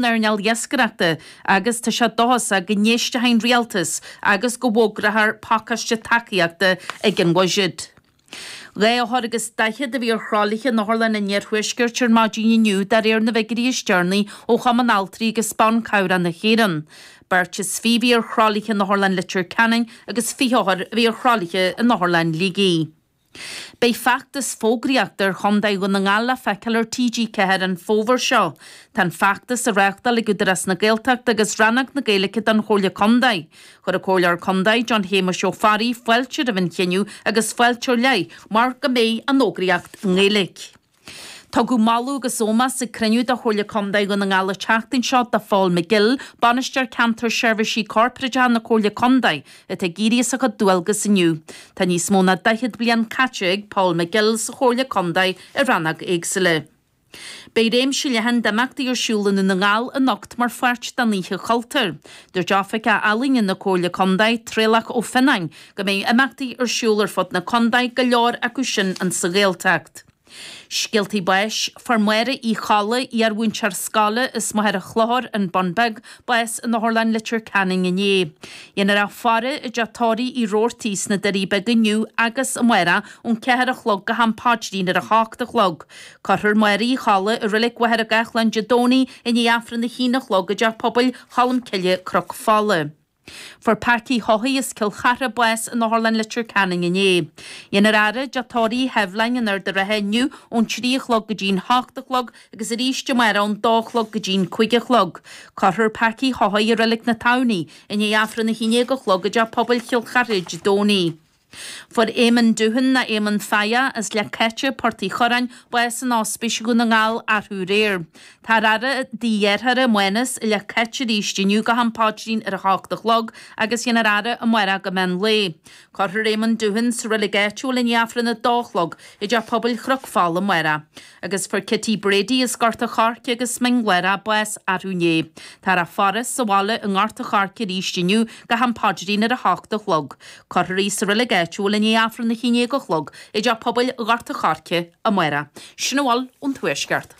n-earnáil iascaireachta agus tá sé dóchasach go n-éistfidh an Rialtas agus go bhfógrófar pacáiste tacaíochta ag an bhuiséad. Dhá othar agus daichead a bhí ar thralaithe in Otharlann an Iarthuaiscirt ar maidin inniu de réir na bhfigiúirí is deireanaí ó Chumann Altraí agus Ban Cabhrach na hÉireann. Beirt is fiche a bhí ar thralaithe in Otharlann Leitir Ceanainn agus fiche othar a bhí ar thralaithe in Otharlann Shligigh. Beidh feachtas fógraíochta ar chontae Dhún na nGall le feiceáil ar TG4 an fómhar seo. Tá an feachtas á reáchtáil ag Údarás na Gaeltachta agus Rannóg na Gaeilge den Chomhairle Contae. Chuir an Comhairleoir Contae, John Shéamuis Ó Fearraigh, fáilte roimh an chinneadh agus fáilte ar leith, mar go mbeidh an fhógraíocht i nGaeilge. Tugadh moladh agus ómós ag cruinniú de Chomhairle Contae Dhún na nGall an tseachtain seo do Phól McGill, Bainisteoir Ceantair Seirbhísí Corpraideacha na Comhairle Contae, atá ag éirí as a chuid dualgas inniu. Tá níos mó ná daichead bliain caite ag Pól McGill sa Chomhairle Contae i ranna éagsúla. Beidh réimse leathan d'imeachtaí ar siúl i nDún na nGall anocht mar pháirt den Oíche Chultúir. Dúirt Oifigeach Ealaíne na Comhairle Contae, Traolach Ó Fionnáin, go mbeidh imeachtaí ar siúl ar fud na contae, go leor acu sin insa Ghaeltacht. Scéaltaí báis, Fuair Máire Uí Cholla, iar-mhúinteoir scoile as Machaire Chlochair, an Bun Beag, bás in Otharlann Leitir Ceanainn inné. Dhéanfar a faire i dTeach Tórraimh Uí Robhartaigh sna Doirí Beaga inniu agus amárach ón ceathair a chlog go ham paidrín ar a hocht a chlog. Cuirfear Máire Uí Cholla i Reilig Mhachaire Gathlán Dé Domhnaigh i ndiaidh Aifreann a haon a chlog i dTeach Pobail Cholmcille, Cnoc Fola. Fuair Packy Haughey as Cill Chartha bás in Otharlann Leitir Ceanainn inné. Dhéanfar a fhaire i dTeach Tórraimh Uí Sheibhleáin in Ard a' Rátha inniu ón trí a chlog go dtí'n h-ocht a chlog agus arís amárach ón dó a chlog go dtí'n cúig a chlog. Cuirfear Packy Haughey i Reilig na Tamhnaí i ndiaidh Aifreann a h-aon déag a chlog i dTeach Pobail Chill Chartha Dé Domhnaigh. Fuair Éamonn Doohan, nó Éamonn Feigheá, as Leic Cáite, Port Uí Chuireáin, bás in ospís Dhún na nGall arú aréir. Táthar á fhaire i dtigh a dheartháir, Mánas, i Leic Cáite arís inniu go ham paidrín ar a hocht a chlog agus dhéanfar a fhaire amárach go meán lae. Cuirfear Éamonn Doohan sa reilig áitiúil i ndiaidh Aifreann a dó a chlog i dTeach Pobail Chnoc Fola amárach. Agus fuair Kitty Brady as Gort a' Choirce agus Mín Lárach bás arú inné. Táthar á faire sa bhaile i nGort a' Choirce arís inniu go ham paidrín ar a h-ocht a chlog. Cuirfear í sa reilig áitiúil i ndiaidh Aifreann a h-aon déag a chlog i dteach pobail Ghort a' Choirce amárach. Sin a bhfuil ón Tuaisceart.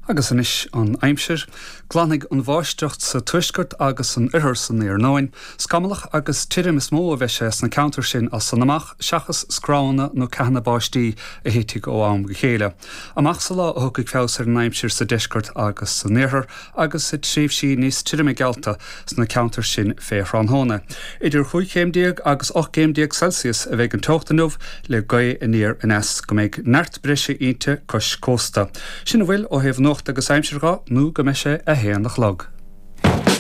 Agus anois an aimsir. Glanfaidh an bháisteach sa tuaisceart agus san oirthear san iarnóin. Scamallach agus tirim is mó a bheidh sé sna ceantair sin as san amach. seachas scrabhanna nó ceathanna báistí a thitfidh ó am go chéile, amach sa lá a thiocfaidh feabhas ar an aimsir sa deisceart agus san iarthar, agus tá tréimhsí níos tirime geallta sna ceantair sin fé thráthnóna. Idir chúig chéim déag agus ocht gcéim déag Celsius a bheidh an teocht inniu le gaoth aniar aneas go mbeidh neart breise inti cois cósta. Sin a bhfuil ó thaobh nuachta agus aimsire nó go mbeidh sé a haon a chlog.